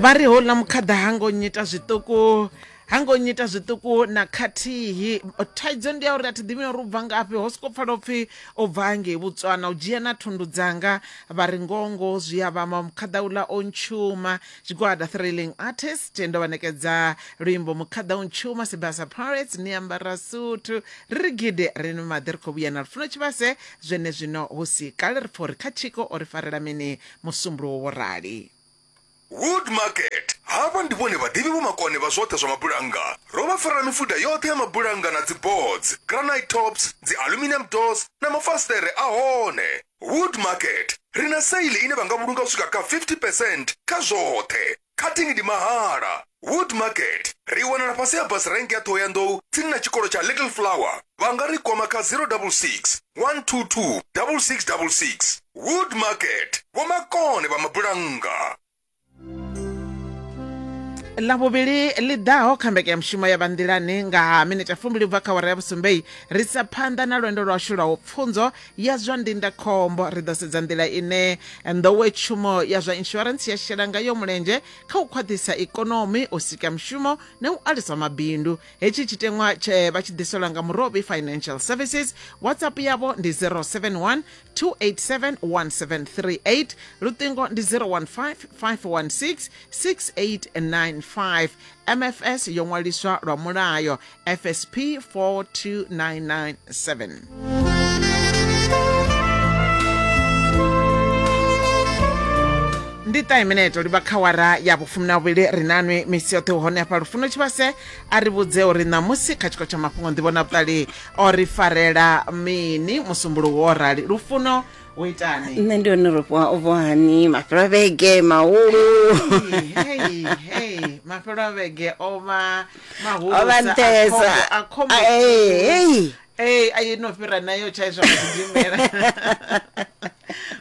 vha ri houḽa mukhaḓa ha ngo nyita zwiṱuku ha ngo nyita zwiṱuku na khathihi thaidzo ndi ya uri a thi ḓivhi uri u bva ngafhi ho soko pfala upfhi o bva ngei botswana u dzhia na thundu dzanga vha ri ngongo zwi a vhama mukhaḓa uḽa o ntshuma tshigwada thrilling artist ndo vha nekedza luimbo mukhaḓa o ntshuma sibasa pirates ni ambara suthu ri ri gidi ri ni maḓi ri khou vhuya na lufuno tshivhase zwene zwino hu si kale ri pfha uri kha tshiko o ri farela mini Musumbuluwo vho rali. Wood Market. Havha ndi vhone vhaḓivhi vho makone vha zwoṱhe zwa mabulannga. Ro vha farela mifuda yoṱhe ya mabulannga na dziboards, granite tops, dzialuminium doors na mafasiṱere a hone. Wood Market. Ri na sale ine vha nga vhulunga u swika kha 50 percent kha zwoṱhe. Cutting ndi mahala. Wood Market ri i wanala fhasi ha bus rank ya Thohoyandou tsini na tshikolo tsha Little Flower. Vha nga ri kwama kha 066 122 6666. Wood Market, vhomakone vha mabulannga. ḽavhuvhili ḽi ḓaho kha mbekanyamushumo ya vhanḓilani nga ha minete fumbili u bva kha wara ya vhusumbei ri sa phanḓa na lwendo lwashu lwa u pfunzo ya zwa ndindakhombo ri ḓo sedza nḓila ine nḓowetshumo ya zwa insurance ya shela ngayo mulenzhe kha u khwaṱhisa ikonomi u sika mushumo na u alusa mabindu hetshi tshiteṅwa tshe vha tshi ḓiselwa nga murobi financial services whatsapp yavho ndi 071 287 1738 luṱingo ndi 015 516 6895 mfs yo ṅwaliswa lwa mulayo FSP 42997. ndi ṱahe mineto livha kha wara ya vhufumi na vhuvhili ri nanwi misi yoṱhe hone hafha lufuno tshivhase a ri vhudze uri ṋamusi kha tshiko tsha mafhungo nḓivho na vhuṱali o ri farela mini musumbulo wo rali lufuno u itani nṋe ndi hone rofhiwa u vhohani mafhelo a vhege mahulu mafhelo a vhege o vha Ho vha nṱesa. Ah, eh, hey. ei a ino fhira nayo tshaiswa kudimela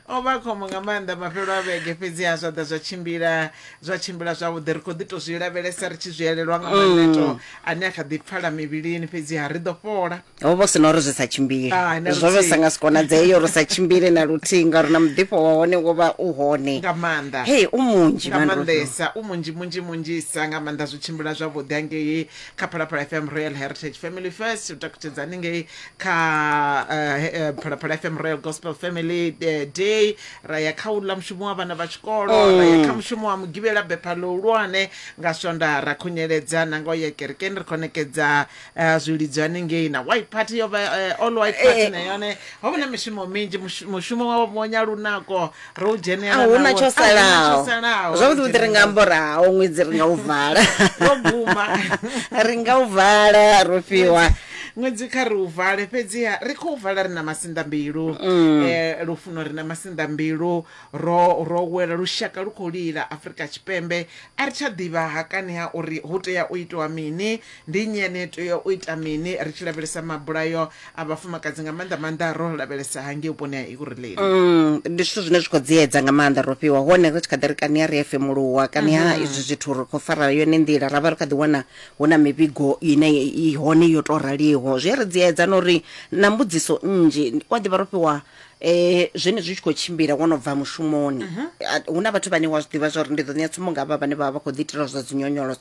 o vha khombo nga maanḓa mafhelo a vhege fhedzi ha zwa ḓa zwa tshimbila zwa tshimbila zwavhuḓi ri khou ḓi tou zwi lavhelesa ri tshi zwi elelwa nga maneto ane a kha ḓi pfala mivhilini fhedzi ha ri ḓo fhola ho vha hu si na uri zwi sa tshimbile Hai, na zwo vhe luthihi. sa nga si konadzee uri sa tshimbile na luthihi ngauri na muḓifho wa hone wo vha u hone nga maanḓa hei u munzhi nga Mandro. maanḓesa u munzhi munzhi munzhisa nga maanḓa zwi tshimbila zwavhuḓi angei kha phalaphala fm royal heritage family first u takutshedza haningei kha eh, he- eh, phalaphala fm royal gospel family eh, day ra ya kha uḽa mushumo wa vhana vha tshikolo ra ya kha mushumo wa mugivhela bepha ḽihulwane nga swonda ra khunyeledza na nga u ya kerekeni ri khonekedza Eh, zwi lidzwa hanengei na white party yo vha eh, all white party Eh. na yone ho vha na mishumo minzhi mushu- mushumo wa bonya lunako ro u dzhenela a huna nawo. tsho A huna tsho salaho zwavhuḓi vhuḓi ri nga amba uri haho ṅwedzi ri nga u vala Wo guma. ri nga u vala ro fhiwa ṅwedzi kha ri u vale fhedziha ri khou vala ri na masinḓa mbilu Mm. eh, lufuno ri na masinḓa mbilu ro ro wela lushaka lu khou lila afurika tshipembe a ri tsha ḓivha hakani ha uri hu tea u itiwa mini Ndi nnyi ane a tea u ita mini ri tshi lavhelesa mabulayo a vhafumakadzi, nga maanḓa-maanḓa ro lavhelesa hangei vhuponi ha Ekurhuleni? Ndi zwithu zwine zwi khou dziedza nga maanḓa. Ro fhiwa hone ri tshi kha ḓi ri kani ha ri a femuluwa, kani ha izwi zwithu ri khou fara yone nḓila, ra vha ri kha ḓi wana hu na mivhigo ine i hone yo tou raliho. Zwi a ri dziedza na uri na mbudziso nnzhi, u a ḓivha ro fhiwa zwenezwi zwi tshi khou tshimbila wo no bva mushumoni, hu na vhathu vhane wa zwi ḓivha zwa uri ndi ḓo ṋea tsumbo nga havha vhane vha vha vha khou ḓiitela zwa dzinyonyoloso,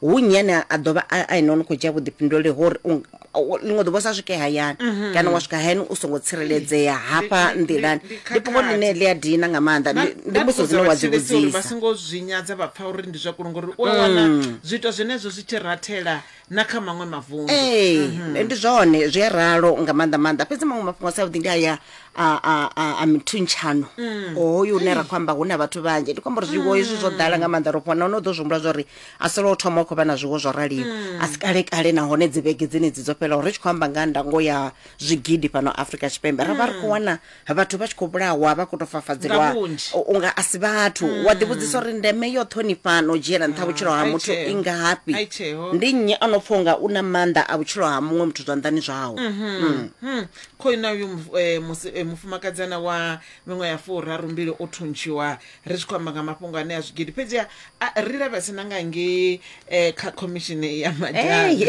hu nnyi ane a ḓo vha a a ene o no khou dzhia vhuḓifhinduleli hori u nga- u- ḽiṅwe ḓuvha u sa swike hayani kana wa swika hayani u songo tsireledzea hafha Ndi- ndi- nḓilani ndi- ndi ndi fhungo khakhathi. ḽine ḽi a dina nga maanḓa Nda- Ndi- ndi nda mbudziso ṱoḓa dzine wa dzi vhathetshelesi uri vha vhudzisa songo zwi nyadza vha pfa uri ndi zwa kulunga uri u a wana zwiito zwenezwo zwi tshi rathela na kha maṅwe mavundu ee Mhm. ndi zwone zwi a ralo nga maanḓa maanḓa fhedzi maṅwe mafhungo a sa vhuḓi ndi aya a, a, a, a mithuntshanho Mm. hoyu une ra khou amba hu na vhathu vhanzhi ndi khou amba uri zwiwo hezwi zwo ḓala nga maanḓa ro fhona no ḓo zwi humbula zwa uri a si lwa u thoma u khou vha na zwiwo zwo raliho a si kale kale nahone dzi vhege dzenedzi dzo fhelaho ri tshi khou amba nga ha ndango ya zwigidi fhano afrika tshipembe ra vha ri khou wana vhathu vha tshi khou vhulawa vha khou tou Nga fafadzeliwa vhunzhi. u- unga a si vhathu wa ḓivhudzisa uri ndeme yo ṱhonifhana u dzhiela nṱha vhutshilo ha ai muthu tsheo. i ngafhi Ai tsheo. ndi nnyi a no pfha unga u na maanḓa a vhutshilo ha muṅwe muthu zwanḓani zwawe Mm. Hmm. khoina uyu muf- eh, musi- eh, mufumakadzana wa miṅwe ya furarumbili o thuntshiwa ri tshi khou amba nga mafhungo ane a zwigidi fhedzi a- a- ri lavhese na nga ngei eh, kha khomishini ya madzhana Ei.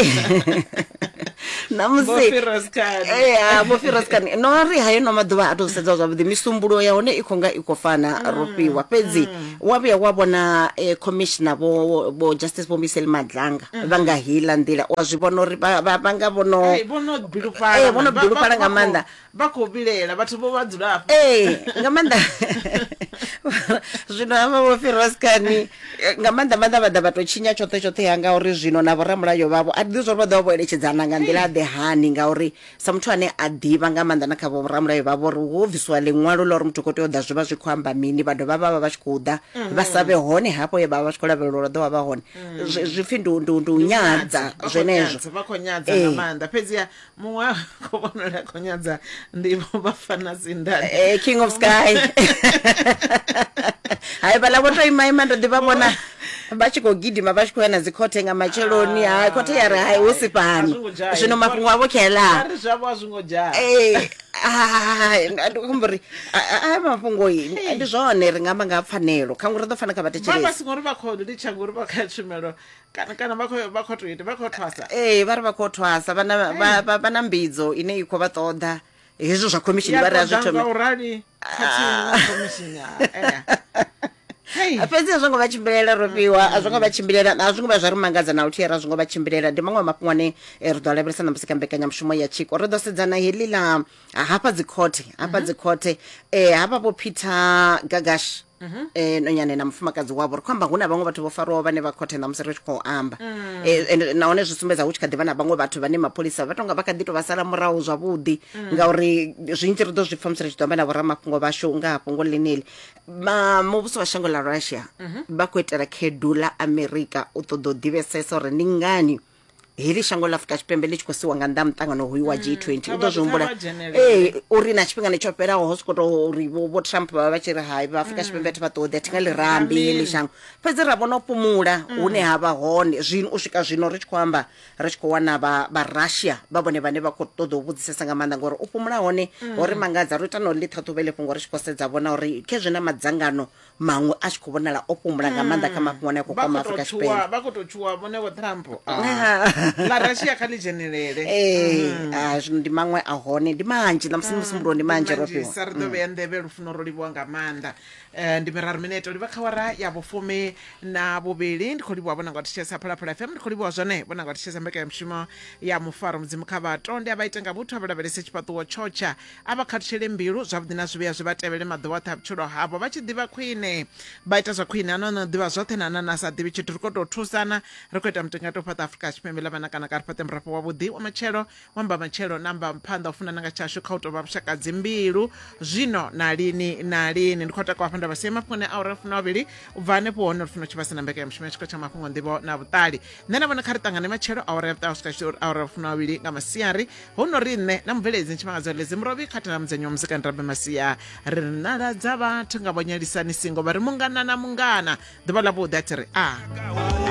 Vho Firoz Khan. namusivhofiroskan no ri hayo no maḓuvha a tou sedza zwavhuḓi misumbulo ya hone i khou nga i khou fana ro fhiwa fhedzi wa vhuya wa vhona eh, commissioner vho vho justice vho miseli madlanga vha nga hila nḓila wa zwi vhona uri vha- vha vha nga vhono Ai, vho no bilufhala, Eh, vho no man. Vha- vha- bilufhala nga vha khou- maanḓa vha khou vhilela vhathu vho vha dzula hafho ee nga maanḓa zwino hama vho firaskani nga maanḓa maanḓa vha ḓa vha tou tshinya tshoṱhe tshoṱhe ya ngauri zwino na vhoramulayo vhavho a ḓi zwa uri vha ḓo vha vho eletshedzana nga nḓila ḓe hani ngauri sa muthu ane a ḓivha nga maanḓa na kha vhoramulayo vhavho uri ho bvisiwa ḽiṅwalo ḽa uri muthu khou tea u ḓa zwi vha zwi khou amba mini vha dovha vha vha vha tshi khou ḓa vha sa vhe hone hafho ye vha vha vha tshi khou lavhelela uri vha ḓo vha vha hone Zwi- zwi pfhi ndi u- ndi u- ndi u nyadza Vha khou zwenezwo nyadza, vha khou nyadza nga Ee. maanḓa fhedziha muṅwe wa kho vhonala kho nyadza ndivho vhafana sindani eh, king of sky hai vhala vho to ima ima ndo ḓivha vhona vha tshi khou gidima vha tshi khou ya na dzikhothe nga matsheloni ah. hai khothe ya ri hai hu si fhano zwino mafhungo avho khelaa eh, ndi khombo ri a mafhungo ndi zwone ri nga amba nga pfanelo kha ngori ri ḓo fana kha vha thetshelesi ngori vha khou litsha ngori vha kha tshumelo kana kana vha khou vha khou to ita vha khou thwasa ee vha ri vha khou thwasa vha na- vha- vha- vha na mbidzo ine i khou vha ṱoḓa hezwo zwa khomishini vha ri a zwi thome nga u rali khathihi na khomishini ha, eh. Hei. A, fhedzi a zwo ngo vha tshimbilela ro fhiwa a zwo ngo vha tshimbilela a zwo ngo vha zwa ri mangadza na luthihi ra zwo ngo vha tshimbilela ndi maṅwe a mafhungo ane eh, ri ḓo a lavhelesa na musi kha mbekanyamushumo ya tshiko ri ḓo sedzana heḽi ḽa ha- hafha dzi khothe hafha dzi khothe eh hafha vho Peter Gagash eh nonyane na mufumakadzi wavho ri khou amba hu na vhaṅwe vhathu vho farwaho vhane vha khothe ṋamusi ri tshi khou amba Eh, and nahone zwi sumbedza hu tshi kha ḓi vha na vhaṅwe vhathu vhane mapholisa vha tonga vha kha ḓi tou vha sala murahu zwavhuḓi ngauri zwinzhi ri ḓo zwi pfa musi ri tshi ḓo amba na vhoramafhungo vhashu nga ha fhungo ḽeneli Ma- muvhuso wa shango ḽa russia vha khou itela khedu ḽa amerika u ṱoḓa u ḓivhesesa uri ndi ngani heḽi shango ḽa afurika tshipembe ḽi tshi khou siwa nga nnḓa muṱangano hoyu wa g 20 u ḓo zwi humbula ee uri na tshifhingani tsho fhelaho ho soko tou uri vho trump vha vha vha tshi ri hai vha afurika tshipembe thi vha ṱoḓi a thi nga ḽi rambi heḽi shango fhedzi ra vhona u fhumula hune ha vha hone zwino u swika zwino ri tshi khou amba ri tshi khou wana vha russia vha vhone vhane vha khou ṱoḓa u vhudzisesa nga maanḓa ngori u fhumula hone ho ri mangadza ro ita na u ḽi ṱhaṱhuvhele fhungo ri tshi khou sedza vhona uri khezwi na madzangano maṅwe a tshi khou vhonala o fhumula nga maanḓa kha mafhungo ane a khou kwama afrika tshipembe vha khou tou tshuwa vhone vho trump Ah. ḽa russia kha ḽi dzhenelele ee ah, zwino ndi maṅwe a hone ndi manzhi na musi musi mbulo ndi manzhi ro fhiwa sa ri ḓo vhea nḓevhe lufuno ro livhuwa nga maanḓa um ndi miraru minete u livha kha wara ya vhufumi na vhuvhili ndi khou livhuwa vhona nga thitshesa phalaphala fm ndi khou livhuwa zwone vhona nga thitshesa mbekanyamushumo ya mufaro mudzimu kha vhato ndi a vha ite nga vhuthu a vha lavhelese tshifhaṱuwo tshotsha A vha khathutsheli mbilu, zwavhuḓi na zwivhi a zwi vha tevhele maḓuvha oṱhe a vhutshilo havho. Vha tshi ḓivha khwine, vha ita zwa khwine, hana o no ḓivha zwoṱhe na hana na sa ḓivhi tshithu. Ri khou tou thusana, ri khou ita mutingati u fhaṱa Afrika Tshipembe ḽa vhanakana, kha ri fhaṱe murafho wavhuḓi wa matshelo, wa mbamatshelo na mbamphanḓa, u funana nga tshashu kha u tou vha vhushaka dzimbilu, zwino na lini na lini. Ndi khou takuwa hafha nda vha sia mafhungoni a awara ya fumi na vhavhili. U bva hanefho hone lufuno tshivhasa na mbekanyamushumo ya tshiko tsha mafhungo, nḓivho na vhuṱali. Nṋe na vhone kha ri ṱangane matshelo awara ya vhuṱaha swika awara ya fumi na vhavhili nga masiari. hu no ri nṋe na mubveledzi ni tshifhinga tshoṱhe zimurovhi kha thanamudzenyi wa muzika nrabe masia ri ri naladza vhathu nga vhonyalisani singo vha ri mungana na mungana ḓuvha ḽa vhuḓi a thi ri a